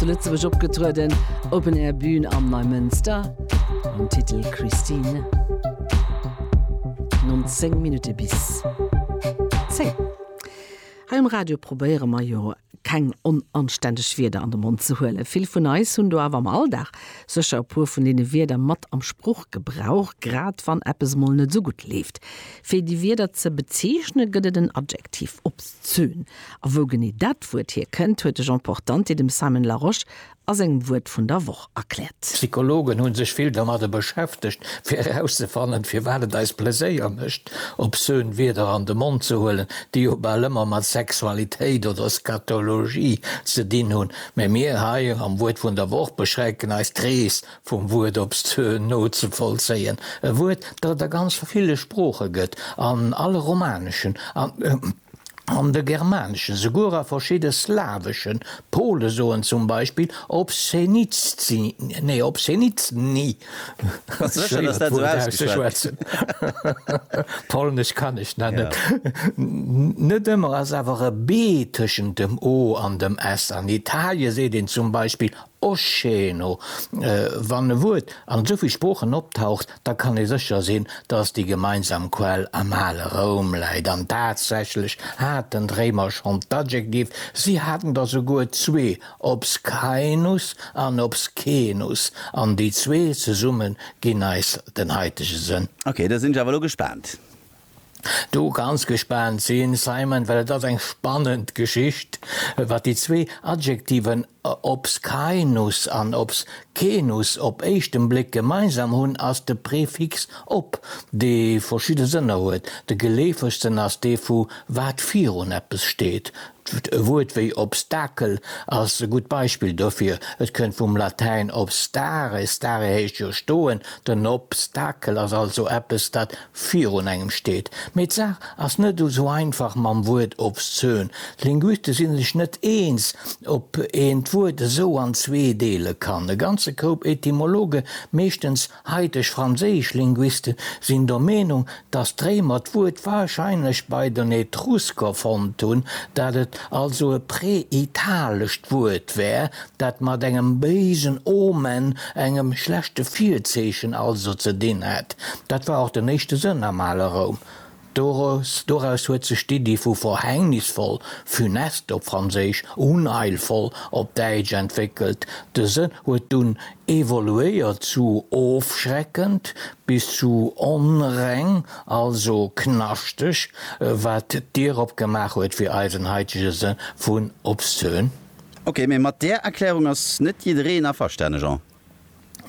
zu Lëtzebuerg opgetrueden, Open Air Bühn am Neimënster, mam Titel Christine. 19 Minutte bis 10. Hei um Radio probéiere mer jo keng onanständeg Wierder an de Mond ze huelen. Vill vun eis hunn do awer am Alldag sécher e puer vun deene Wierder mat am Spruchgebrauch, grad wann eppes emol net esou gutt leeft. Fir déi Wierder ze bezeechne gëtt et en Adjektiv, obszön. A wou genee dat Wuert hier kënnt, huet de Jean Portante dem Simon Larosche a sengem Wuert vun der Woch erkläert. D'Psychologen hunn sech vill domadder beschäftegt, fir erauszefannen, firwat et eis Pleséier mécht, obszön Wierder an de Mond ze huelen, déi jo bal ëmmer mat Sexualitéit oder Scatologie ze dinn hunn. Mä mir hei am Wuert vun der Woch beschränken eis, d'Rees vum Wuert obszön nozevollzéien. E Wuert, dat et a ganz ville Sprooche gëtt, an alle romaneschen. An de germaneschen, souguer a verschidde slaweschen, Pole soen zum Beispill obszenicny, obszenicny, polnesch kann ech dat net, net ëmmer ass awer e b tëschent dem o an dem s. An Italie seet een zum Beispill Oscheeno, Wann e Wuert an esou vill Sproochen optaucht, da kann ee sécher sinn, datt déi gemeinsam Quell am ale Roum läit. An tatsächlech haten d'Réimer schonn d'Adjektiv, si haten der souguer zwee, obscaenus an obscenus, an déi zwee zesumme ginn eis den haitege Sënn. Ok, da sinn ech awer elo gespaant. do ganz gespaant sinn, Simon, well et ass eng spannend Geschicht, wat déi zwee Adjektiven obscaenus an obscenus op éischten Bléck gemeinsam hunn, ass de Prefix ob, dee verschidde Sënner huet. De geleefegsten ass dee vu wat virun eppes steet. E Wuert wéi Obstakel ass e gutt Beispill dofir. Et kënnt vum Latäin obstare, stare heescht jo stoen, den Obstakel ass also eppes, dat virun engem steet. Mee d'Saach ass net esou einfach mam Wuert obszön. D'Linguiste si sech net eens, ob een d'Wuert esou an zwee deele kann. E ganze Koup Etymologe, meeschtens haiteg franséisch Linguiste, sinn der Meenung, datt d'Réimer d'Wuert warscheinlech bei den Etrusker fonnt hunn, dat et also e präitalescht Wuert wär, dat mat engem béisen Omen, engem schlechte Virzeechen also, ze dinn hat. Dat war och den éischte Sënn am ale Roum. Doraus, doraus huet sech d'Iddi vu verhängnisvoll, funeste op Franséisch, unheilvoll op Däitsch, entwéckelt. De Sënn huet dunn evoluéiert zu ofschreckend bis zu onreng, also knaschteg, wat d'Dier opgemaach huet fir eisen haitege Sënn vun obszön. Ok, mee mat där Erklärung ass net jiddereen averstane, Jean.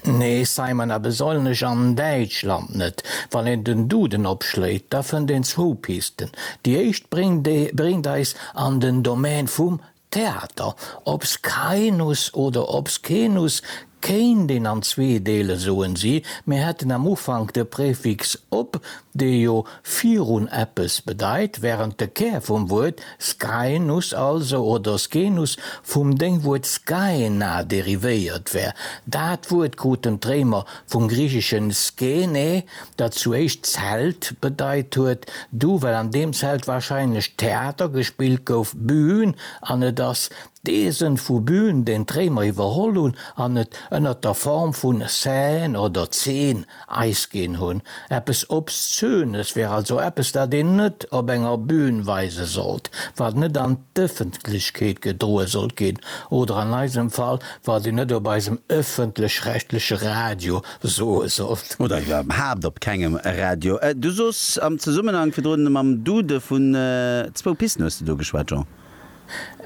Nee, Simon, a besollnech an Däitschland net. Wann een den Duden opschléit, da fënnt een zwou Pisten. Déi éischt bréngt eis an den Domän vum Theater. Obscaenus oder Obscenus Kéint een an zwee deelen, soen si. Mir hätten am Ufank de Prefix op, dee jo virun eppes bedeit, wärend de Kär vum Wuert Skainuss also, oder Scenus, vum Déngwuert Skaena derivéiert wär. Dat Wuert kruten d'Réimer vum griicheschen skene, dat zu éischt Zelt bedeit huet, du well an deem Zelt warscheinlech Theater gespillt gouf, Bühn, an et ass D'Eesen vu Bühn den d'Réimer iwwerholl hunn an et ënnert der Form vun Seine oder Zeen Eis ginn hunn. Eppes Obszönes wär also eppes, dat een net op enger Bühn weise sollt, wat net an d'Ëffentlechkeet gedroe sollt ginn oder an eisem Fall, wat een net op eisem ëffentlech-rechtleche Radio soe sollt. Oder iwwerhaapt op kengem Radio. Du soos am Zesummenhank virdrun mam Dude vun zwou Pisten, hues de do geschwat, Jean?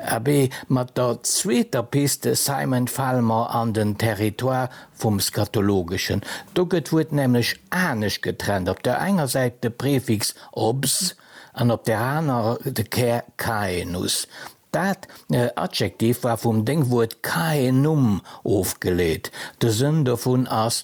Abee, mat der zweeter Piste Simon fale mer an den Territoire vum Scatologeschen. Do gëtt d'Wuert nämlech anescht getrennt, op der enger Säit de Prefix obs an op där anerer de Kär caenus. Dat Adjektiv war vum Déngwuert caenum ofgeleet, de Sënn dovun ass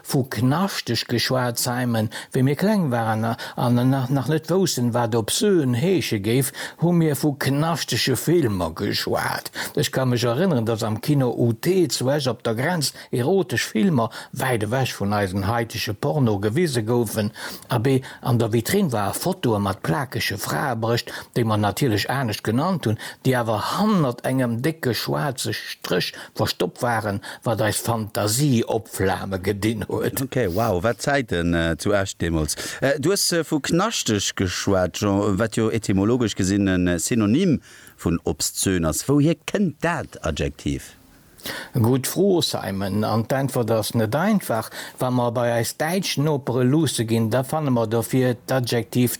Vu knaschteg geschwat, Simon. Wéi mir kleng waren an nach net woussten, wat obscen heesche géif, hu mir vu knaschtege Filmer geschwat. Ech ka mech erënneren, dass am Kino UT zu Esch op der Grenz erotesch Filmer, wäit ewech vun eisen haitege Porno, gewise goufen. Abee, an der Vitrinn war e Fotoe mat plakege Fraebrécht, déi mer natierlech anescht genannt hunn, déi awer hannert engem décke schwaarze Stréch Verstoppt waren, wat eis Fantasie opflame gedinn huet. Ok, wow, wat Zäiten zu Esch deemools. Du hues vu knaschteg geschwat, Jean, wat jo etymologesch gesinn e Synonym vun obszön ass. Wouhier kënnt dat Adjektiv? Gutt Fro, Simon, an d'Äntwert ass net einfach. Wa mer bei eis däitsch Nopere luusse ginn, da fanne mer dofir d'Adjektiv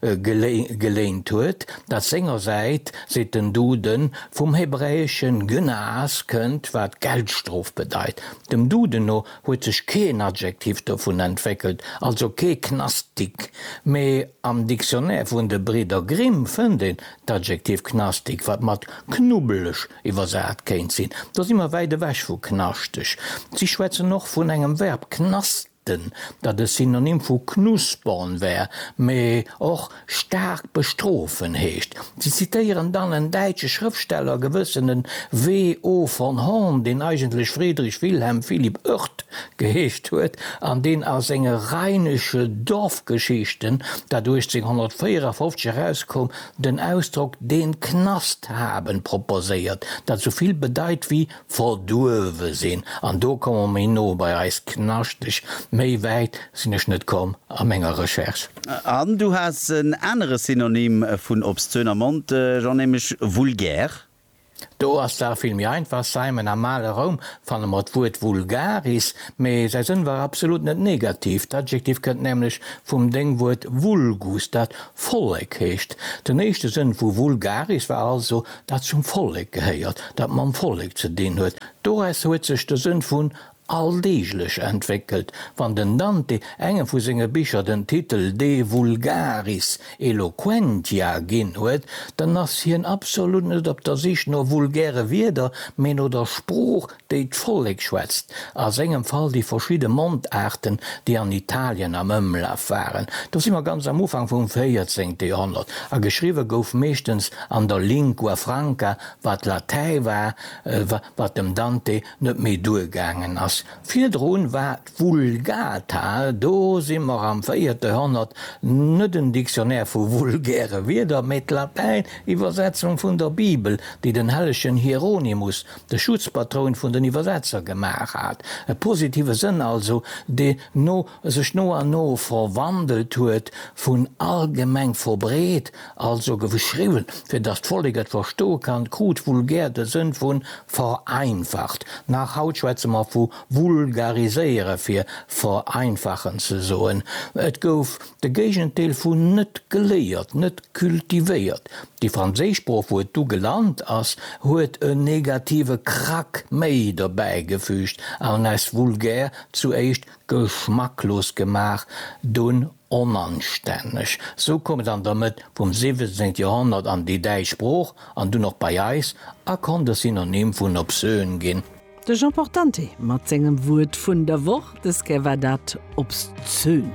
geléint huet, dat sengersäit, seet den Duden, vum hebräesche Gnas kënnt, wat Geldstrof bedeit. Dem Duden no huet sech keen Adjektiv dovun entwéckelt, also kee Knastik, mee am Dictionnaire vun de Bridder Grimm fënnt een d'Adjektiv knastig, wat mat knubbeleg iwwersat kéint sinn. Do si mer wäit ewech vu knaschteg. Si schwätzen och vun engem Verb knastern. Enten, dat e Synonym vu knuspern wär, mee och staark bestrofen heescht. Si zitéieren dann en däitsche Schrëftsteller, gewëssene W. O. von Horn, deen eigentlech Friedrich Wilhelm Philipp Oerth geheescht huet an deen a senge Rheinische Dorfgeschichten, dat 1854 erauskoum, den Ausdrock den Knast haben proposéiert, dat esou vill bedeit wéi Verduewe sinn, an do komme mer méi no bei eis Knaschteg. Méi wäit sinn ech net komm a menger Recherche. An du has en anere Synonym vun obszön am Mond, Jean, nämlech vulgär. Do ass d'Saach vill méi einfach, Simon, Am ale Roum fanne mer d'Wuert vulgaris, mee säi Sënn war absolut net negativ. D'Adjektiv kënnt nämlech vum Déngwuert vulgus, dat Vollek heescht. Den éischte Sënn vu vulgaris war also Dat zum Vollek gehéiert, dat mam Vollek ze dinn huet, doraus huet sech de Sënn vun alldeeglech entwéckelt. Wann den Dante engem vu senge Bicher den Titel De vulgaris eloquentia ginn huet, dann ass hien absolut net op der Sich no vulgäre Wierder, mee no der Sprooch déi d'Vollek schwätzt, a sengem Fall déi verschidde Mondaarten, déi an Italien am Ëmlaf waren, do si mer ganz am Ufank vum véierzéngte Joerhonnert, a geschriwwe gouf meeschtens an der Lingua franca, wat Latäi war, wat dem Dante net méi duergaangen ass. Virdru war d'Vulgata, do si mer am véierte Joerhonnert, net en Dictionnaire vu vulgäre Wierder, mä d'Latäin-Iwwersetzung vun der Bibel, déi den hellegen Hieronymus de Schutzpatroun vun den Iwwersetzer gemaach hat, e positive Sënn also, dee no sech no an no verwandelt huet, vun allgemeng verbreet, also geschriwwen, fir datt d'Vollek et verstoe kann, krut vulgär de Sënn vu vereinfacht. Nach haut schwätze mer vu vulgariséiere fir vereinfachen ze soen. Et gouf De Géigendeel vun net geléiert, net cultivéiert. Déi franséisch Sprooch, wou et du gelant ass, huet en negative Krack méi dobäi gefüügt an aus vulgär zuéischt geschmacklos gemaach, dunn onanstänneg. Sou koum et an der Mëtt vum 17. Joerhonnert an déi däitsch Sprooch an dunn och bei eis a konnt e Synonym vun obsön ginn. De Jean Portante mat sengem Wuert vun der Woch, Dës Kéier war dat obszön.